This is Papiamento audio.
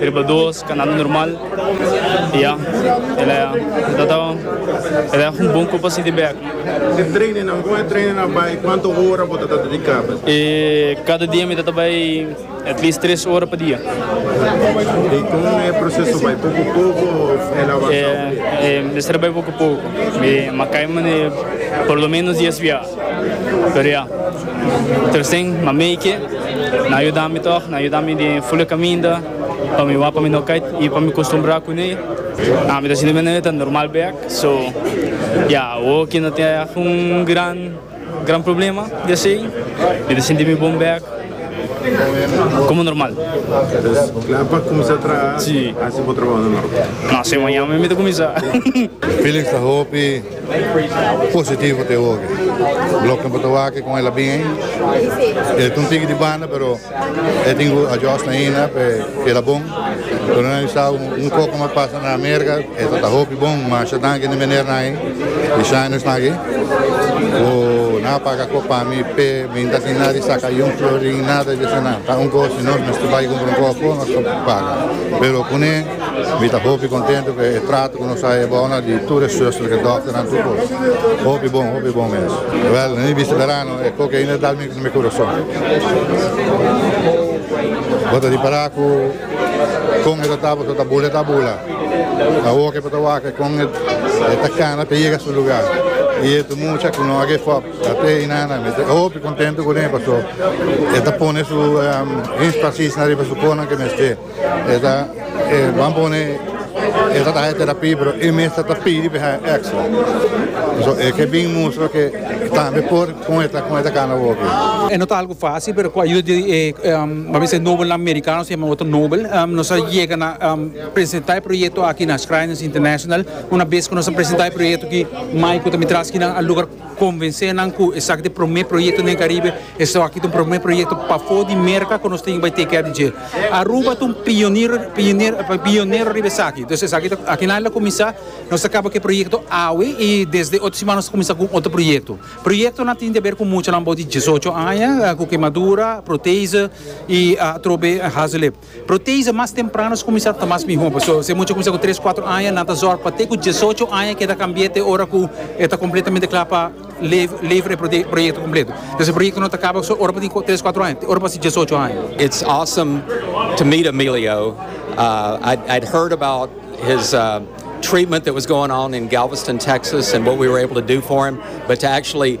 Riba dos kanando normal y ya el a tratado el a un bon copa si di bek. E trainingnan con e trainingnan bay cuanto ora bo ta ta dedica pa e? Cada dia mi ta ta bay at least tres ora pa dia. Y con e proceso bay poco poco of el a avansa obligado? Mester bay poco poco. Mi a cay mane por lo menos dies via. Pero ya. Tercen, ma meike, nan a yuda mi tog, nan a yuda mi di e fule caminda, pa mi wak pa mi no cay y pa mi costumbra cu ne. Ami ta sinti menen e ta normal bek, so ya awo que no tin algun gran, gran problema di esey, mi ta sinti mi bon bek, como normal. Entonces, cla pa cuminsa traha, asina bo trabaho ta normal? No, si mañana mi ta cuminsa. Felix ta hopi. Positivo te hopi. Bloknan por ta wak kon el a bin ei. E ta un tiki di banda pero e tin ku adjust ainda pa e keda bon. Pero nan bisa un poko mas pasa na Amerika e ta ta hopi bon. Masha danki na minernan ei di Shine esnan aki ku nan a paga kop pa mi p'e bin ta sin nada di saka yun florin nada di esnan. Ta un kos si nos mester bai kumpra un koko nos ta paga pero kuné. Mi ta hopi contento cu e trato cu nos a haya ebao na di tur e zusternan cu dokternan tur cos. Hopi bon, hopi bon mes. Wel, na mi bista berano e coke ainda a dal mi na mi curason. Bo ta ripara cu con e ta taba cu ta bula e ta bula. Awo ke bo ta wak e con e ta cana pa e yega su lugar. Y e ta mucha cu no a give up. Ate hinana mi ta hopi contento cune paso e ta pone su enspasis na riba su cosnan cu e mester. E ta e ban pone e ta haña terapia pero e mester ta pidi pa e haña extra. So e ke bin mustra ke tambe por kon e ta kon e ta kana working. E no ta algu fásil pero ku ayuda di e mi a ser Nobelnan Merikano se yama Otto Nobel nos a yega na presentá e proyekto aki na Shriners International. Una bes ku nos a presentá e proyekto aki mai ku ta mitrá skinan a lugar. Konvensé nan ku esaki ta e promé proyekto den Karibe, esaki ta un promé proyekto pafó di Merka ku nos tin ke bai teikia di dje. Aruba ta un pioniro pionero riba esaki. Entonces esaki ta akinal a kuminsá, nos ta kaba ku e proyekto awe i desde otro siman nos ta kuminsá ku un otro proyekto. Proyektonan tin di haber ku muchanan abou di diesocho aña, ku kemadura, protese i atrobe hazelip. Protease mas temprano ta kuminsá ta mas mihó. Pasobra si e mucha a kuminsá ku tres, kuatro aña, nan ta zòrg pa te ku diesocho aña keda kambié te ora ku e ta kompletamente kla pa levra e proyekto kompleto. Entonces e proyekto no ta kaba so ora bo tin ku tres, kuatro aña, te ora bo hasi diesocho aña. It's awesome to meet Emilio. I'd heard about his treatment that was going on in Galveston, Texas and what we were able to do for him, but to actually